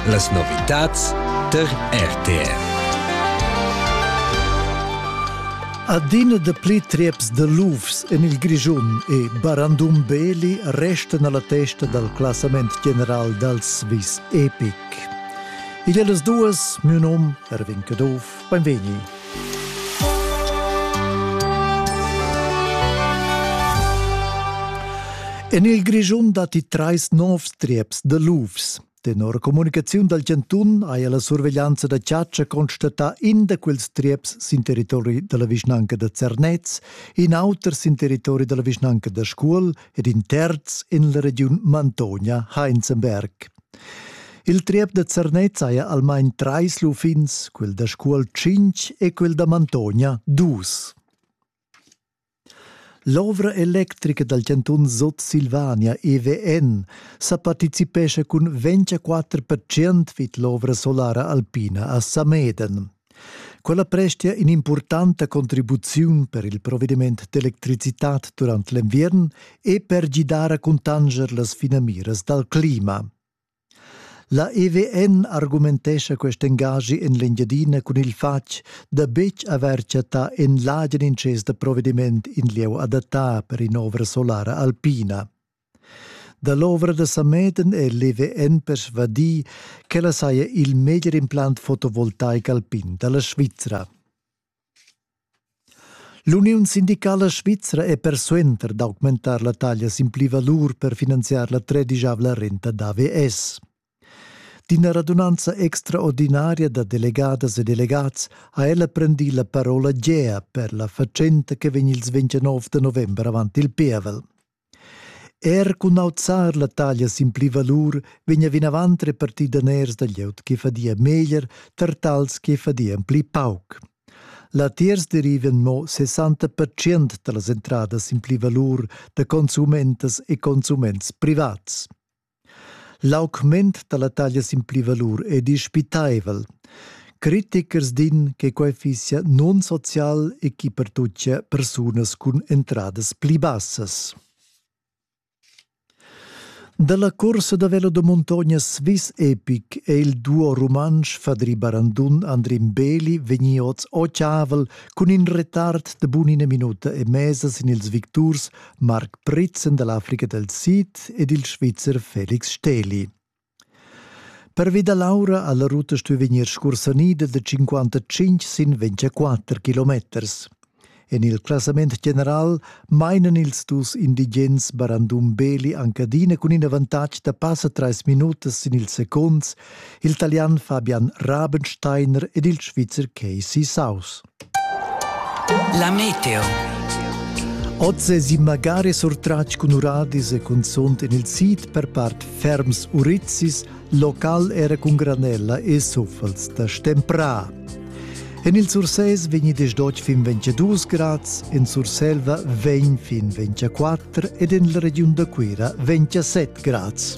Las novitads tar RTR. Adina da pli trieps de lufs en il Grischun e Barandum Beli restan alla testa dal classament general dal Swiss Epic. Il e las duas, mio nom, Erwin Caduff, Beinvegni. En il Grischun datti trais novs trieps da lufs. Tenor communicaziun dal chantun haja la surveglianza da chatscha constatà in da quels trieps sin territori da la vischnanca da Zernez, in auter sin territori da la vischnanca da Scuol ed in terz en la regiun Mantonia-Heinzenberg. Il triep da Zernez haja almain trais lufins, quel da Scuol tschintg e quel da Mantogna dus. L'ovra electrica dal chantun Sutsilvania EWN sa participescha cun 24% vid l'ovra solara alpina a Sameden. Quella prestia in'impurtanta contribuziun per il provediment d'electricitad durant l'enviern e per gidar a cuntanscher las finamiras dal clima. La EVN argumentescha quest engaschi en l'Engiadina cun il fatg da betg avair chattà en l'agen intschess da provediment in lieu adattà per in'ovra solara alpina. Dall'ovra da Sameden è l'EVN persvadì ch'ella saja il meglier implant fotovoltaic alpin da la Svizra. L'Uniun sindicala svizra è persuenter d'augmentar la taglia sin plivalur per finanziar la tredischavla renta d'AVS. D'ina radunanza extraordinaria da delegadas e delegats ha ella prendì la parola gea per la fatschenta che vegn ils 29 da november avant il pievel. Er cun auzar la taglia sin pli valur vegna vinavant repartì daners da glieud che fadia meglier tar tals che fadian pli pauc. Latiers derivan mo 60% da las entradas sin pli valur da consumentas e consuments privats. L'augment dalla taglia sin pli valur è dispitaivel. Critichers din che quei fissia non-social e che pertuccia persunas cun entradas pli bassas. Dalla corsa da velo da montogna Swiss Epic è il duo rumantsch Fadri Barandun Andrin Beli vegni oz ocavel cun in retard de bunina minuta e mesa sin ils victurs Marc Pritzen dall'Africa del Sid ed il Svizzer Felix Steli. Pervi da l'aura alla ruta stuy vegnir scursanida da 55 sin 24 kilometers. En il classament general mainan ils dus indigens Barandum Beli Ancadina cun in avantatg da passa 3 minutas sin il seconds, il Italian Fabian Rabensteiner ed il Svizzer Casey Saus. La meteo. Oz es in magari surtratg cun uradis e cunzunt in il sit per part ferms urizis, local era cun granella e suffels da stempra. En il Sursès vegni desdotg fin 22 grads, en Surselva vegn fin 24 ed en la regiun da Cuira 27 grads.